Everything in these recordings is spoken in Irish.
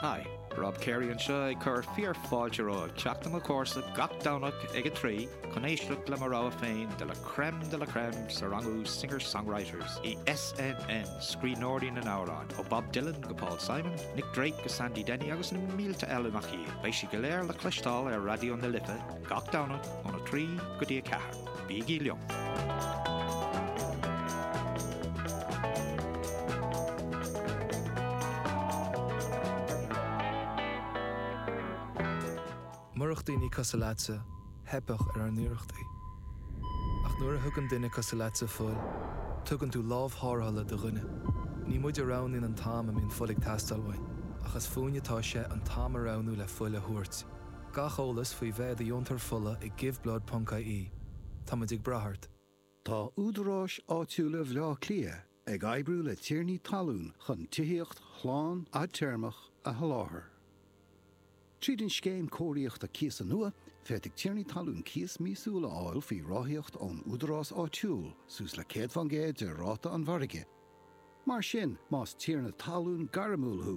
Hi, Rob Carey anseo ag cur fíor fáilte romhaibh chuig Teach na mBocht gach Domhnach ag 3 chun éisteacht le mo rogha féin de la crème de la crème sa seánra Singer Songwriters is iad sin scríbhneoirí na n-amhrán ó Bob Dylan go Paul Simon, Nick Drake go Sandy Denny agus na mílte eile nach iad. Beidh siad go léir le cloisteáil ar Raidió na Life gach Domhnach óna 3 go dtí 4. Bígí liom! Murach daoine cosúil leatsa, theipfeadh ar ár n-iarrachtaí. Ach nuair a thugann duine cosúil leatsa fuil, tugann tú lámh thárrthála do dhuine. Ní muid a roghnaíonn an t-am a mbíonn fuil ag teastáil uainn, ach is fúinne atá sé an t-am a roghnú le fuil a thabhairt. Gach eolas faoi bheith i do dheontóir fola ag giveBlood.ie. Táimid ag brath ort. Tá Údaráis Áitiúla Bhleá Cliath ag oibriú le tiarnaí talún chun tithíocht shlán fhadtéarmach a sholáthar. Tríd an Scéim Cóiríochta Cíosa nua, féadfaidh tiarnaí talún cíos míosúil a fháil faoi ráthaíocht ón údarás áitiúil suas le 100% de ráta an mhargaidh. Mar sin, más tiarna talún gairmiúil thú,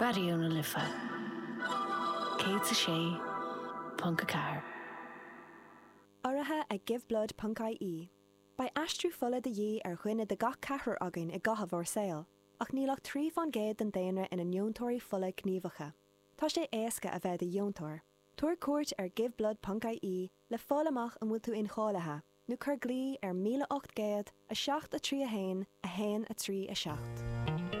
Raidió na Life 106.4. Urraithe ag Giveblood ponc IE, beidh aistriú fola de dhíth ar dhuine de gach ceathrar againn i gcaitheamh ár saoil, ach níl ach trí fán gcéad den daonra ina ndeontóirí fola gníomhacha. Tá sé éasca a bheith i do dheontóir. Tabhair cuairt ar Giveblood ponc IE le fáil amach an bhfuil tú incháilithe, nó cuir glao ar 1800 7 3 1 1 3 7.